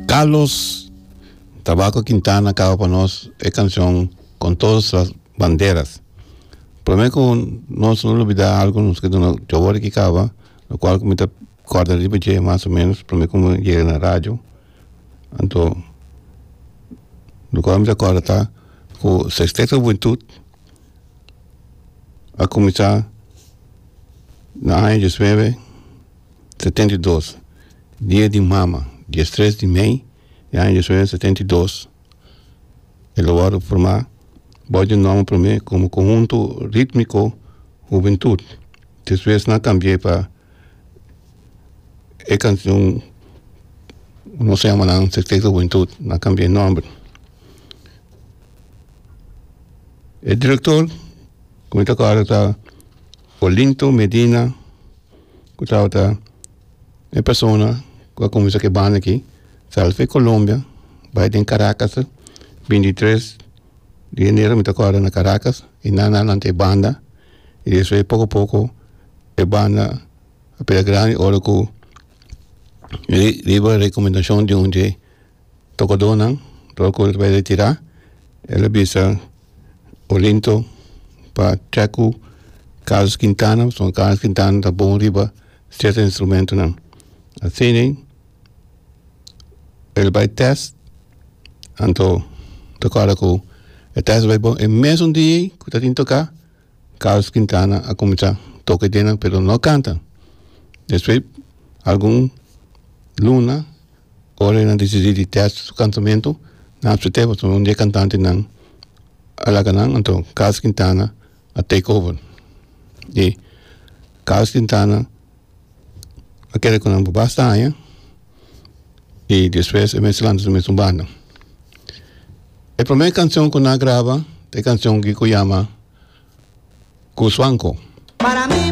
Carlos Tabaco Quintana caba pa nos e cancion Con todos las banderas prome cu nos no lo olbida algo nos ke duna dje awor aki caba lo cual cu mi ta cuarda riba dje mas o menos prome cu mi yega na radio anto lo cual mi ta cuarda ta cu sexteto juventud a cuminsa na aña diesnuebe. setenta i dos dia di mama dia tres di mei e aña dicion hende setenta i dos e lo wòrdu formá bou di nòmber promé komo Konhuntu Rítmiko Hubentut despues nan kambié pa e kanshon nos a yama nan Sekseto Hubentut nan kambié nòmber e direktor ku mi ta kòrda ta. Olinto Medina cu tabata e persona cu a cuminsa cu e banda aki sali for di Colombia bay den Caracas bintitres di enero mi ta acorda na Caracas y nan a lanta e banda y despues poco poco e banda a pega grandi ora cu riba recomendacion di un dje tokodonan lo kul ta bai retirá e lo bisa olinto pa treku carlos quintana pasobra carlos quintana ta bon riba cierto instrumentonan asina el bai test anto ta acorda cu e test bai bon e mesun dia ei cu ta tin toca. Carlos Quintana a cuminsa toca ideanan pero no a canta despues algun luna ora e nan decidi di test su cantamento nan a spet'e pasobra un di e cantantenan a laga nan anto Carlos Quintana a take over y Carlos Quintana a kere con nan por basta aña. y despues e mester lanta su mesun banda. E primer cancion cu nan a graba ta e cancion cu yama Cusbanco.